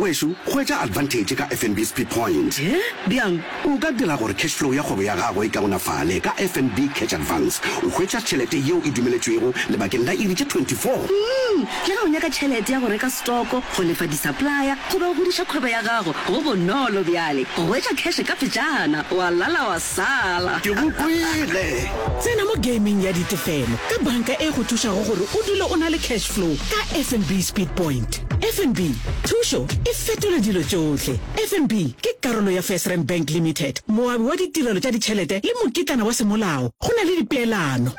Wešu, hwetša advantage ka FNB Speed Point. He? Bjang? O ka dira gore cash flow ya kgwebo ya gago e kaonafale ka FNB Cash Advance. O hwetša tšhelete yeo e dumeletšwego lebakeng la iri tše 24. Umm, le ge o nyaka tšhelete ya go reka stoko, go lefa di-supplier goba go godiša kgwebo ya gago, go bonolo bjale go hwetša cash ka phetšana, wa lala wa sala. Ke go kwele! Tsena mo gameng ya ditefelo ka banka e go thušago gore o dule o na le cash flow ka FNB Speed Point. fnb thušo e fetola dilo tšohle fnb ke karolo ya firsrand bank limited moabi wa ditirelo tša ditšhelete le mokitlana wa semolao go na le dipeelano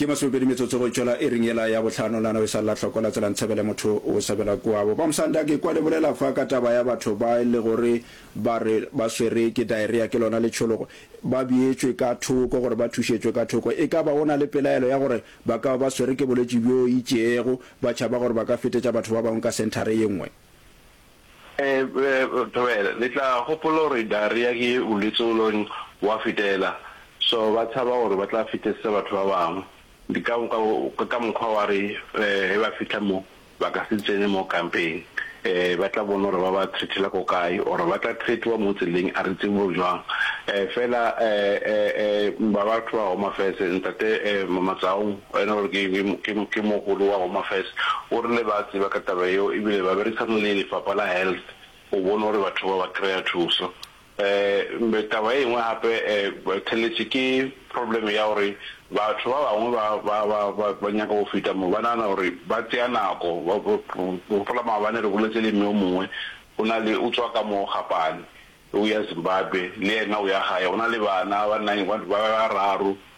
Ke masomepedi metsotso go tšwela iring yela ya bohlano la nao e sa lla hloko la tsela ntshebele motho o sebela kuabo ba msanda ke kwa le bolela fa ka taba ya batho ba e le gore ba re ba swere ke diarrhea ke lona letšhologo ba bietšwe ka thoko gore ba thušetšwe ka thoko e ka ba o na le pelaelo ya gore Ba ka ba ba swere ke bolwetši bjo itšeego, ba tšhaba gore ba ka fetetša batho ba bangwe ka senthara ye nngwe. Ee, le tla gopola gore diarrhea ke bolwetši o leng wa fetela, so ba tšhaba gore ba tla fetesetsa batho ba bangwe. Ke ka mokgwa wa re ge ba fihla mo, Ba ka se tsene mo kampeng. Ee, ba tla bona gore ba ba threatela ko kae, or ba tla threatiwa mo tseleng, a re tsebe go jwang. Ee, fela um ba batho ba Home Affairs, Ntate um Matsaong, ene gore ke, ke, ke mogolo wa Home Affairs, o rile ba tseba ka taba eo ebile ba berekisana le lefapha la Health go bona gore batho ba ba kry-a thuso. Mme taba engwe gape theletše ke problem ya gore batho ba bangwe ba ba ba ba ba nyaka go feta mo ba nagana gore ba tseya nako ba gopola maabane re boletse le mme o mongwe o na le o tswa ka mo gapane o ya Zimbabwe le ena o ya gae go na le bana ba nine ba bararo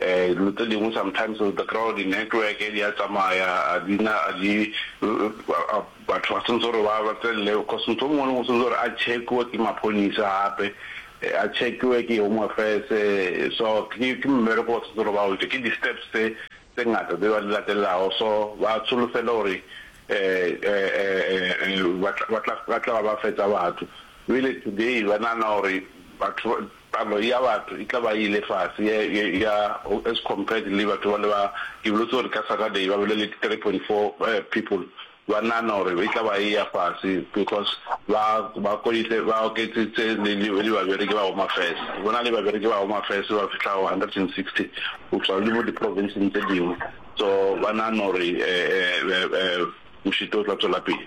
Dilo tse dingwe sometimes the crowd, di network di a tsamaya a di na a di batho ba sentse gore ba ba tselele cause motho o mongwe le mongwe o sentse gore a check-we ke maphodisa gape a check-we ke home affairs so ke ke mmereko ba sentse gore ba o etse ke di steps tse tse ngata tse ba di latelelago so ba tsholofela gore ba tla ba tla ba ba fetsa batho really today ba nagana gore batho Palo ya batho e tla ba e ile fase ya, ya, ya, as compared le batho bale ba, ke boletse gore ka Saturday ba bile le 3.4 people, ba nahana gore e tla ba e ya fase because ba, ba koitse, ba oketsitse le, le, le babereki ba Home Affairs. Go na le babereki ba Home Affairs ba fihlago 160 go tšwa le mo di-province-ng tše dingwe, so ba nahana gore, eh, eh, eh, mošito o tla tšwela pele.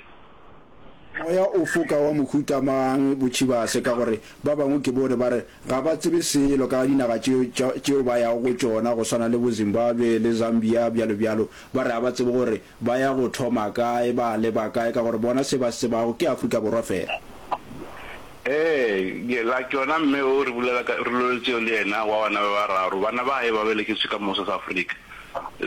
Moya o foka wa mohuta mang? Botšhibase, ka gore ba bangwe ke bone ba re ga ba tsebe selo ka dinaga tše tšeo ba yago go tšona, go swana le bo Zimbabwe le Zambia, bjalo bjalo. Ba re ga ba tsebe gore ba ya go thoma kae, ba leba kae, ka gore bona se ba se tsebago ke Afrika Borwa fela. Ee, ke la tšona mme o re bulela ka rulelo tšeo le yena wa bana ba bararo. Bana ba gae ba belegetšwe ka mose sa Afrika.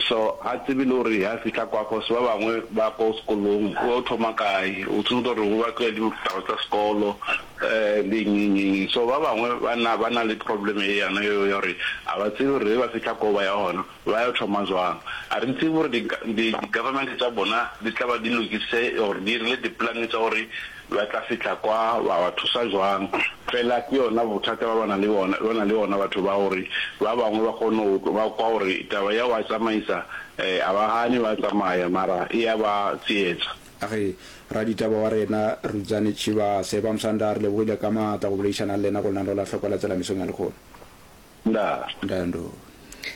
So ga tsebe le gore ha fihla kwa cause ba bangwe ba ko sekolong o thoma kae o tsebe gore o ba tloya le ditaba tsa sekolo um le eng eng eng so ba bangwe ba na ba na le problem e yana eo ya gore a ba tsebe gore ge ba fihla ko ba ya gona ba ya thoma jwang a re tsebe gore di government tsa bona di tla ba di lokise or di rile di plan tsa gore Ba tla fihla kwa, wa ba thusa jwang? Fela ke yona bothata ba ba na le bona, ba na le ona batho ba gore ba bangwe ba kgone go tlo, ba kwa gore taba ya go a tsamaisa, eh, a ba gane ba tsamaya mara e ya ba tsietsa. A re, Raditaba wa rena Rudzani Tshivhase, Ba Musanda, re lebogile ka maatla go boledišana le lena go lena re la hlokola tsela mesong ya lekgono. na? Ntando.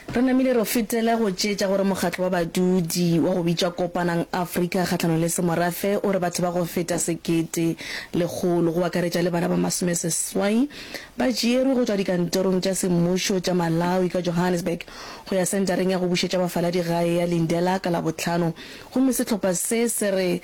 Re namile re fetela go tšeetša gore mokgatlo wa badudi wa go bitšwa Kopanang Afrika kgahlanong le Semorafe o re batho ba go feta sekete lekgolo, go akaretša le bana ba masomeseswai, ba tšeerwe go tšwa dikantorong tša semmušo tša Malawi ka Johannesburg go ya Sentareng ya go Bušetša Bafaladi Gae ya Lindela ka Labohlano Gomme sehlopha se se re,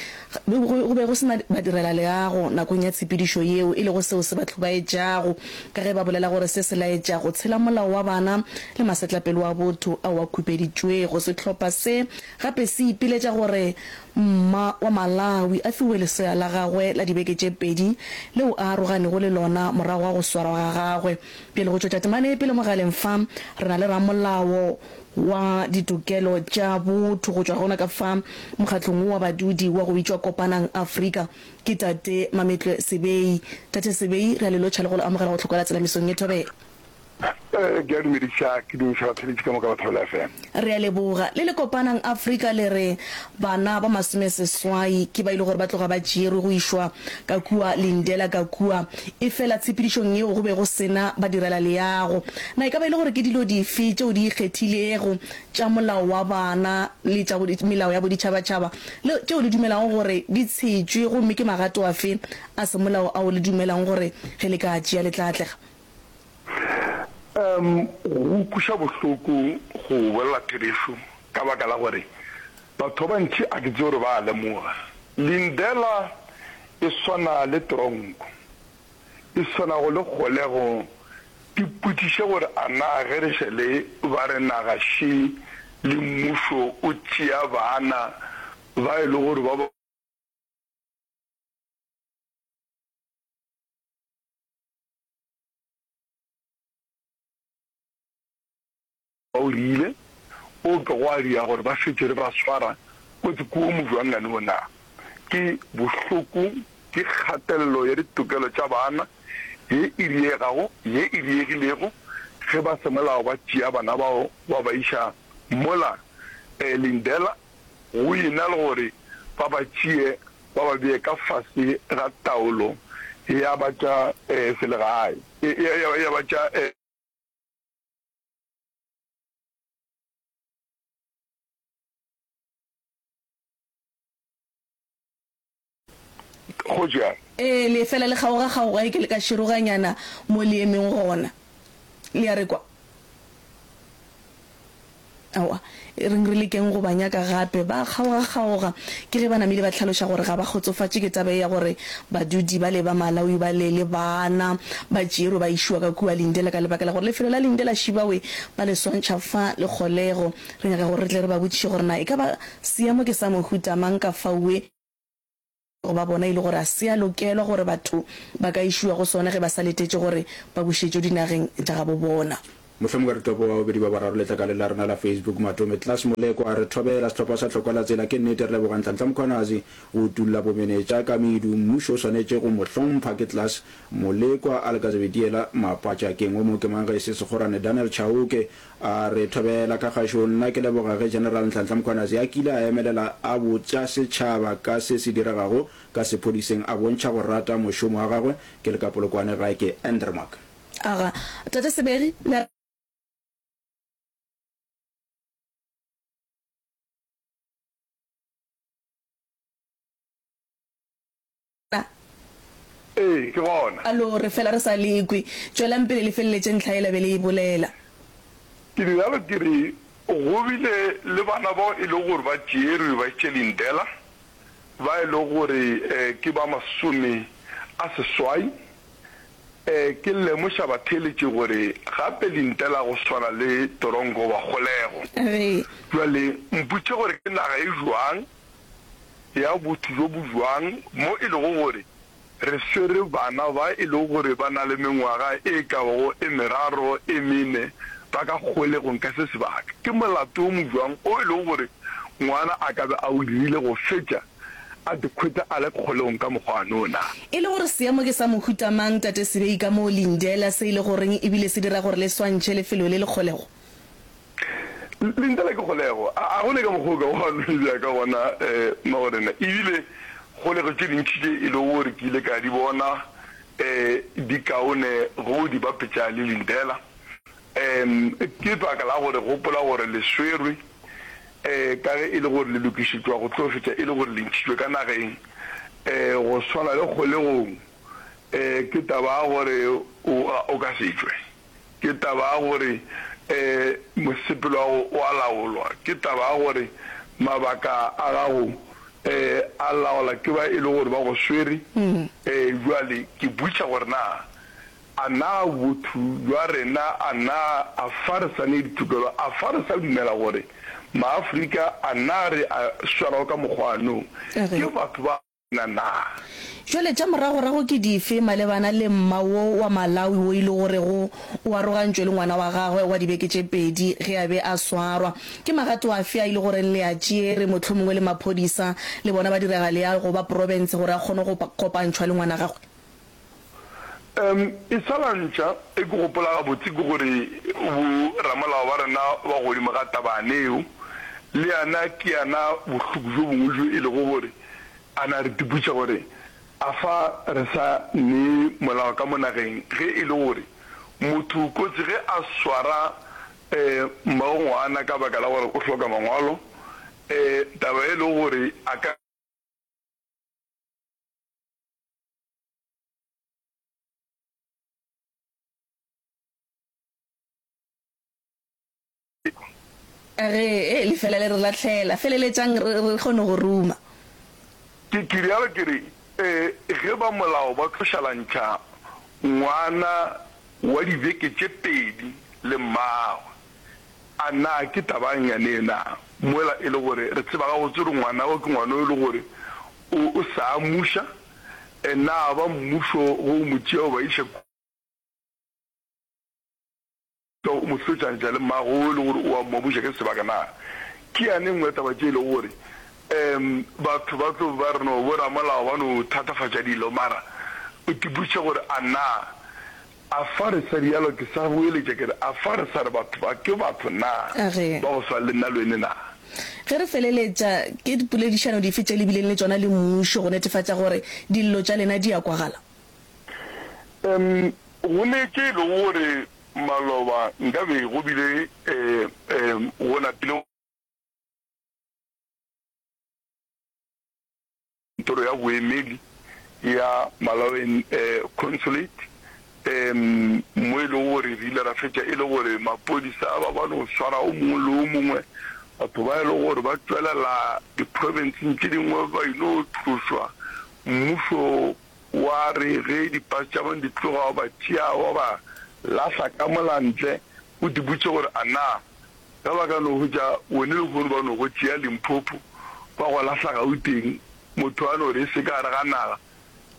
Go be go se na badirelaleago nakong ya tshepedišo yeo, e lego seo se ba hlobaetšago, ka ge ba bolela gore se se laetša go tshela molao wa bana le masetlapelo a botho ao a khupeditšwego. Sehlopha se gape se ipiletša gore mma wa Malawi a fiwe lesea la gagwe la dibeke tše pedi leo a aroganego le lona morago ga go swarwa ga gagwe. Bjale, go tšwetša temana ye pele mogaleng fa, re na le ramolao wa Ditokelo tša Botho go tšwa gona ka fa Mokgatlong wo wa Badudi wa go bitšwa Kopanang Afrika, ke Tate Mametlwe Sebei. Tate Sebei, re a le lotšha le go le amogela go Tlhokwela Tselamisong ye Thobela. Ke a dumediša, ke dumediša batheeletši ka moka ba Thobela FM. Re a leboga. Le le Kopanang Afrika le re Bana ba masomeseswai ke ba e le gore ba tloga ba tšerwe go išwa ka kua Lindela ka kua. Efela tshepedišong yeo go be go se na badirelaleago. Na e ka ba e le gore ke dilo dife tšeo di ikgethilego tša molao wa bana le tša melao ya boditšhabatšhaba le tšeo le dumelago gore di tshetšwe, gomme ke magato afe a semolao ao le dumelago gore ge le ka a tšea le tla atlega? Umm go ukwiša bohloko go bolela therešo ka baka la gore batho ba bantši a ke tsebe gore ba a lemoga. Lindela e swana le tronko, e swanago le kgolego. Ipotšiše gore a na ge re šele ba re naga še le mmušo o tšea baana ba e le gore ba O rile, O ke gwa dira gore ba šetše re ba swara kotsi kudu mojwanngane wo na. Ke bohloko, ke kgatelelo ya ditokelo tša bana ye e diegago, ye e diegilego ge ba semolao ba tšea bana bao ba ba iša mola. Lindela, Go e na le gore ba ba tšee ba ba bee ka fase ga taolo ya ba tša selegae, ya ba tša. go ja. Ee, le fela le kgaogakgaoga e ke le ka široganyana mo le emeng gona. Le a re kwa? Aowa, e reng re lekeng go ba nyaka gape. Ba a kgaogakgaoga ke ge ba namile ba hlaloša gore ga ba kgotsofatše ke taba ye ya gore badudi bale ba Malawi bale le bana ba tšerwe ba išiwa ka kua Lindela ka lebaka la gore lefelo la Lindela Shibawe ba le swantšha fa le kgolego. Re nyaka gore re tle re ba botšiše gore na e ka ba Seemo ke sa mohuta mang ka fao e lego ba bona e le gore ga se a lokelwa gore batho ba ka išiwa go sona ge ba sa letetše gore ba bušetšwe dinageng tša gabo bona. Mohlomongwe re tlo boa bobedi ba boraro letlakale la rena la Facebook. Matome Klaas Molekwa a re thobela, Sehlopha sa Tlhokwalatsela ke nnete re leboga Nhlanhla Mkhwanazi go utulla bomenetša ka medu. Mmušo o swanetše go mo hlompha. Ke Klaas Molekwa. Alka Zebediela Mapatša Keng o mo ke mang ge e se Sekgorane? Daniel Chauke A re, Thobela ka gašo, nna ke leboga ge General Nhlanhla Mkhwanazi a kile a emelela a botša setšhaba ka se se diregago ka sephodiseng a bontšha go rata mošomo wa gagwe. Ke le ka Polokwane gae ke Endermark. A ga Tate Seberi le a. na? Ee, ke gona. Alo, re fela re sa le kwe. Tšwelang pele le feleletše ntlha yela be le e bolela. Ke di realo ke re, Go bile le bana bao e lego gore ba tšeerwe ba etše lindela, ba e lego gore ke ba masome a seswai. Ke lemoša batheeletši gore gape lindela go swana le toronko wa kgolego. Re. Bjale mpotše gore ke naga e bjang ya botho bjo bo bjang mo e lego gore re swere bana ba e lego gore ba na le mengwaga e ka bago e meraro, e mene ba ka kgolegong ka se sebaka? Ke molato wo mo bjang o e lego gore ngwana a ka be a o dirile go fetša a dikhwetša a le kgolegong ka mokgwa wa no na? E le gore seemo ke sa mohuta mang, Tate Sibei, ka moo Lindela, se e lego reng e bile se dira gore le swantšhe lefelo le le kgolego? Lentša la ke kgolego. A go ne ka mokgwa o ka wa no e bea ka gona, Magorena? E bile kgolego tše dintši tše e lego gore ke ile ka di bona di kaone ge o di bapetša le lentela. Ke baka la go re gopola gore le swerwe, ka ge e le gore le lokišetšwa go tlo fetša e le gore le ntšhitšwe ka nageng, go swana le kgolegong. Ke taba ya gore o ka se tšwe. ke taba ya gore mosepelo wa gago o a laolwa, ke taba ya gore mabaka a gago a laola ke ba e le gore ba go swere. Bjale ke butša gore na a na botho bja rena a na a fa re sa ne ditokelo, a fa re sa dumela gore Maafrika a na re a swarwa ka mokgwa wa nou ke batho ba na naa? Jwale tša moragorago ke dife malebana le mma wo wa Malawi wo e lego gorego o arogantšwe le ngwana wa gagwe wa dibeke tše pedi ge a be a swarwa? Ke magato afe a e le goreng le a tšere, mohlomongwe le maphodisa le bona ba diragaleal go ba profense gore a kgone go kopantšhwa le ngwana gagwe? Umm e sa la ntša e ke gopola gabotse ke gore bo ramolao ba rena ba godimo ga tabane eo le yana ke yana bohloko bjo bongwe bjo e lego gore a na re tiputša gore a fa re sa ne molao ka mo nageng ge e le gore motho kotsi ge a swara umm mmagongwana ka baka la gore o hloka mangwalo umm taba e lego gore a ka A re, Ee, lefela le re lahlela. Feleletšang re, re kgone go ruma. Ke, ke realo, ke re, Ee, ge ba molao ba tlo šalantšha ngwana wa dibeke tše pedi le mmagwe, a na ke taba'ng yanee na? Mola e le gore re tseba gabotse gore ngwana o ke ngwana yo e le gore o, o sa amuša. e na ba mmušo ge o mo tšea o ba iša kua o mo fetšantšha le mmago o e le gore o a mmabuša ke sebaka na ke yane nngwe ya taba tše e lego gore um batho ba tlo ba re no boramolao ba no thatafatša dilo mara o tiputša gore a na Afa re sa rialo? Ke sa goeletša ke re, afa re sa re batho ba ke batho na, A re. ba go swana le nna le wene na? Ge re feleletša, ke dipoledišano dife tše le bileng le tšona le mmušo go netefatša gore dillo tša lena di a kwagala? Em, go ne ke e le gore maloba nka be go bile eh, em, go napile go. Kantoro ya Boemedi ya Malawian Consulate mo e lego gore re ile ra fetša e le gore maphodisa a ba ba no swara o mongwe le o mongwe. Batho ba e lego gore ba tšwelela di-province-ng tše dingwe ba e no tlošwa. Mmušo wa re ge di-bus tša bone di tloga wa ba tšea wa ba lahla ka mola ntle, o di botše gore a na Ge ba ka no hwetša bone lehono ba no go tšea Limpopo ba go lahla Gauteng, motho a no re e se ka gare ga naga,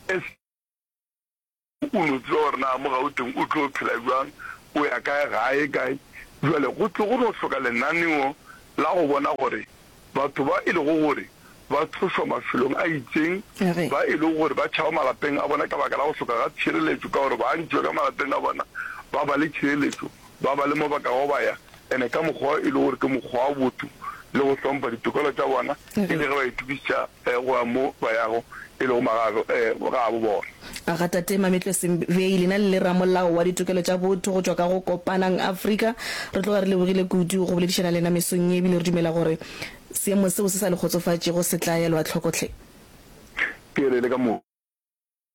SG, o no tseba gore na mo Gauteng o tlo phela bjang, o ya kae ga a ye kae. Bjale go tlo go no hloka lenaneo la go bona gore Batho ba e lego gore ba tlošwa mafelong a itšeng ba e lego gore ba tšhaba malapeng a bona ka baka la go hloka ga tšhireletšo ka gore ba ntšwe ka malapeng a bona ba ba le tšhireletšo, ba ba le mo ba kago ba ya and ka mokgwa e lego gore ke mokgwa wa botho le go hlompha ditokelo tša bona e le ge ba itokišetša go a mo ba yago, e lego magato gabo bona. A ga Tate Mametlo Sembei, lena le le ramolao wa ditokelo tša botho go tšwa ka go Kopanang Afrika, re tloga re lebogile kudu go boledišana lena mesong ye ebile re dumela gore seemo seo se sa le kgotsofatšego se tla elwa hloko hle. Ke re le ka moka.